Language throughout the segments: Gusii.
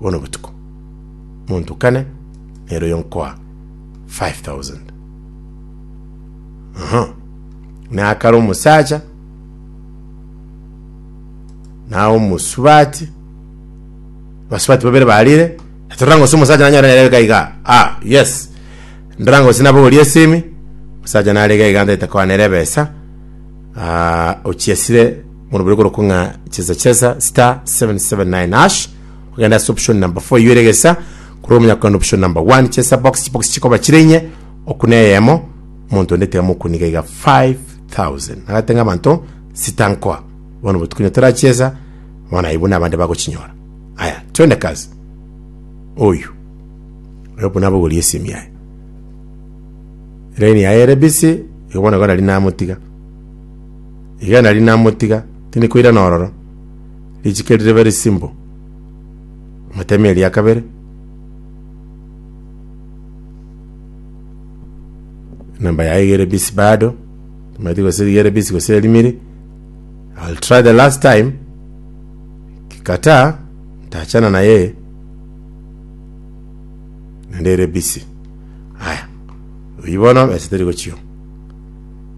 bono botuko, monto kane nere oyo nkoa 5000. Aha, nakare omosacha na omosubati basubati babere barire toranga ose omosacha nanyore nere iga iga ah yes ndaranga ose nabogorie esimi omosacha narega iga ntaete koa nere ebesa ah, ochiesire Bono bori korokwa ng'a chesa chesa star 779 hash ogenda ase option number 4 eywo ere egesa korwa omonyakogenda option number 1 chesa box chibox chikoba chire inye okune eyemo omonto onde tiga mokuniga iga 5000 agate ng'a abanto sita nkoa bono botuko onye torachiesa bono aye buna abande bagochinyora aya twende kazi oyu oyo buna abogorie esimi yaye line yaye ere busy igo bono igo nari namotiga Iga nari namotiga, tindi koirana ororo, richiko eri ribe risimbo. Amateme eria kabere. Namba yaye igere bisi bado. Mati gose rigere bisi gose erimiri. I'll try the last time. Kikata, ntachana naye. Nende ere bisi. Haya. Oyibono, ese teri gochio.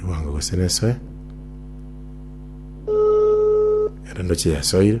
Ewango gose nesoe. Ere ndoche yasoire.